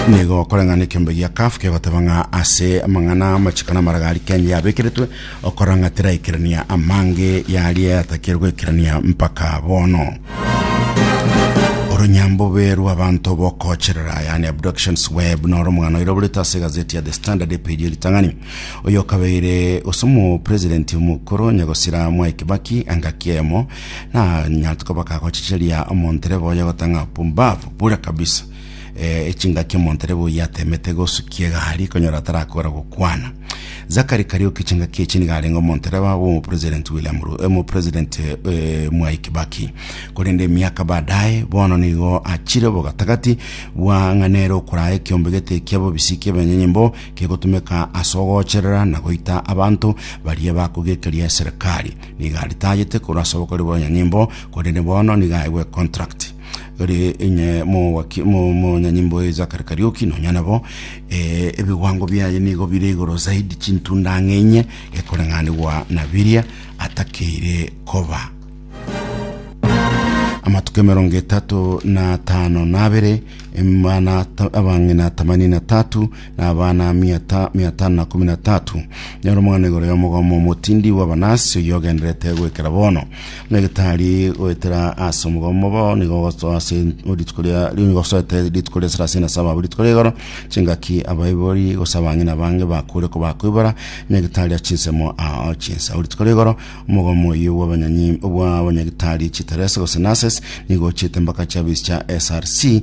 nigo okoreng'ana ekiombe gia kafu kegoteba ng'a ase amang'ana amachiko na amaraga aria kenya yabekeretwe okorora ng'a teraikerania amange yaria yatakire goikerania mpaka bono oronyambobe rw'abanto bokocherera yani abductions web noro omogano oira oborete ase egazeti ya the standard epeji eritang'ani oyo okabeire ase omo president omokoro nyagosira mwai kibaki engaki eyemo Na nyatuko bakagochicheria omonterebe oye gotang'a pumbavu bure kabisa. Eh, echingaki omonterebe oye atemete gosukia egari konyora atarakora gokwana. Zakari Kariuki chingaki echi niga arenge omonterebe abo omo President William Ru, omo President eh, Mwai Kibaki. Korende emiaka baadaye bono nigo achire bogatagati bwa ng'a nere okoraya ekiombe gete ekia bobisi ki'ebenyanyimbo kegotumeka ase ogocherera na goita abanto baria bakogekeria eserikali. Nigo aritagete korwa ase obokori bw'onye nyimbo, korende bono nigo aegwe contract. Ore inye mowaki mo monye nyimbo e Zachary Kariuki nonya nabo eh, ebigwango biaye nigo bire igoro zaidi chintunda ang'e inye ekoreng'anigwa na biria atakeire koba. Amatuko emerongo etato na atano na abere, emana ta- abang'ina themanini na tatu na abana mia ta- mia tano na komi na tatu. Nyora omogano igoro y'omogomo omotindi bw'Abanasi oyio ogenderete goikera bono. Buna egetari goetera ase omogomo bo nigo gosoa ase rituko ria nigo gosoete rituko ria sarasini na saba abwo rituko ria igoro chingaki abaibori gose abang'ina bange bakure kobakoibora buna egetari ase chinsemo ao chinsa. Abwo rituko ria igoro omogomo oyio bw'abanyanyi bw'abanyagitari chiteresi gose nurses nigo ochiete mpaka chiabichicha SRC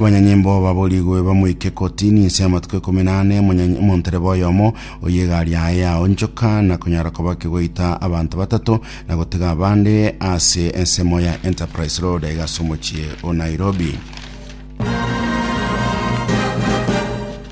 Abanyanyimbo baborigwe bamoike kotini inse y'amatuko ikomi na ane omonyanyi- omontereba oyomo oyo egari yaye yaonchoka na konyara koba kegoita abanto batato na gotega abande ase ensemo ya Enterprise Road aiga ase omochie o Nairobi.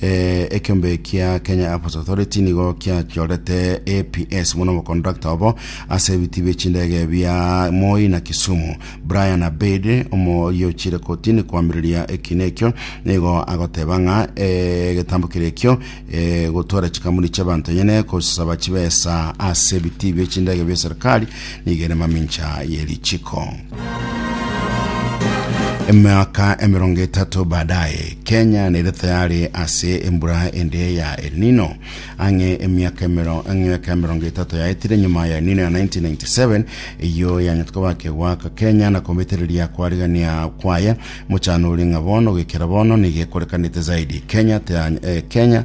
Eh, ekiombe kia Kenya Airports Authority nigo kiachorete APS buna omokontrakta obo ase ebiti bie chindege bia Moi na Kisumu. Brian Abed omoyochire kotini koamireria ekina ekio nigo agoteba ng'a eh, egetambo kere ekio eh, gotwara chikampuni chi'abanto enyene kosaba chibesa ase ebiti bie chindege bia serikali nigo ere mamincha ye richiko. Emiaka emerongo etato baadaye, Kenya nere tayari ase embura ende ya El Nino. Ang'e emiaka emero- emiaka emerongo etato yaetire nyuma ya El Nino ya 1997, eyio yanyete kobaka egwaka Kenya na kometereria koarigania kwaye. Mochano oria ng'a bono goikera bono nigo ekorekanete zaidi. Kenya taya- eh, Kenya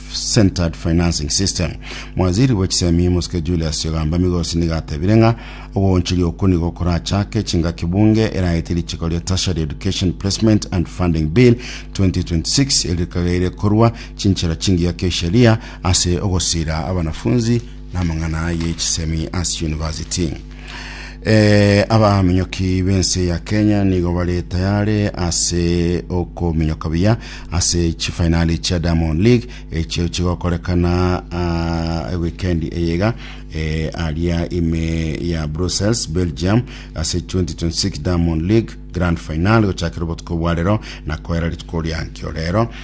centered financing system. Mwaziri bwe chisemi Muske Julius Yogamba Migosi nigo atebire ng'a ogooncheria okwo nigo okorachake chingaki bunge eraete richiko ria Tertiary Education Placement and Funding Bill 2026 eririkagaire korua chinchera chingiya ki'esheria ase ogosira abanafunzi namang'ana ye chisemi ase university. Eh, abaminyoki b'ense ya kenya nigo bare tayare ase okominyoka buya ase chifainali chia diamond league echio chigokorekana ah, ewikendi eyega eh, aria ime ya brussels belgium ase 2026 diamond league grand final gochakera obotuko bwarero na koera rituko riankio rero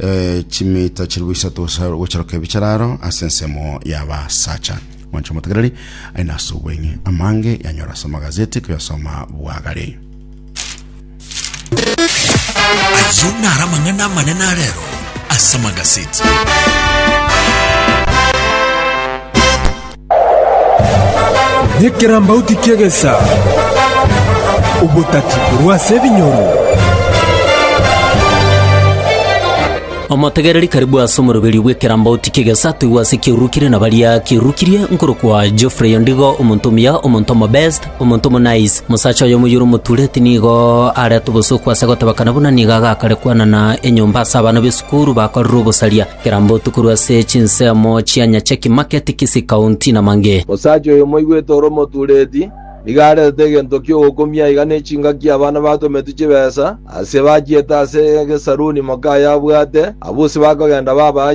Eh, chimita chiribu isato gosa- gocharoka ebi chararo ase ensemo y'abasacha mwanche omotegereri aye nase obweng'e amange yanyora ase amagazeti koyasoma bwagare Ayio nara amang'ana amanene arero ase amagazeti. Nekerambauti ki'egesa, obotati korwa ase ebinyoro. Omotegereri karibu ase omoroberio bw'ekerambauti ki'egesa atoigwe ase ekiaururukire na baria kiaururukirie, nkorokwa Geoffrey Ondigo, omonto omuya, omonto omobest, omonto omonice. Mosacha oyomo oyore omotureti nigo arete obosooku ase goteba kana buna nigo agakare kwanana enyomba ase abana b'esukuru bakorire obosaria. Kera mbotu korwa ase chinsemo chia Nyacheki Market, Kisii County, na mang'e. Osacha oyo moigwete ore omotureti, nigo aretete egento ki'ogokumia iga n'echingaki abana batometwe chibesa, ase bachiete ase egesaruni moka aye abwate, abusi bakogenda babaa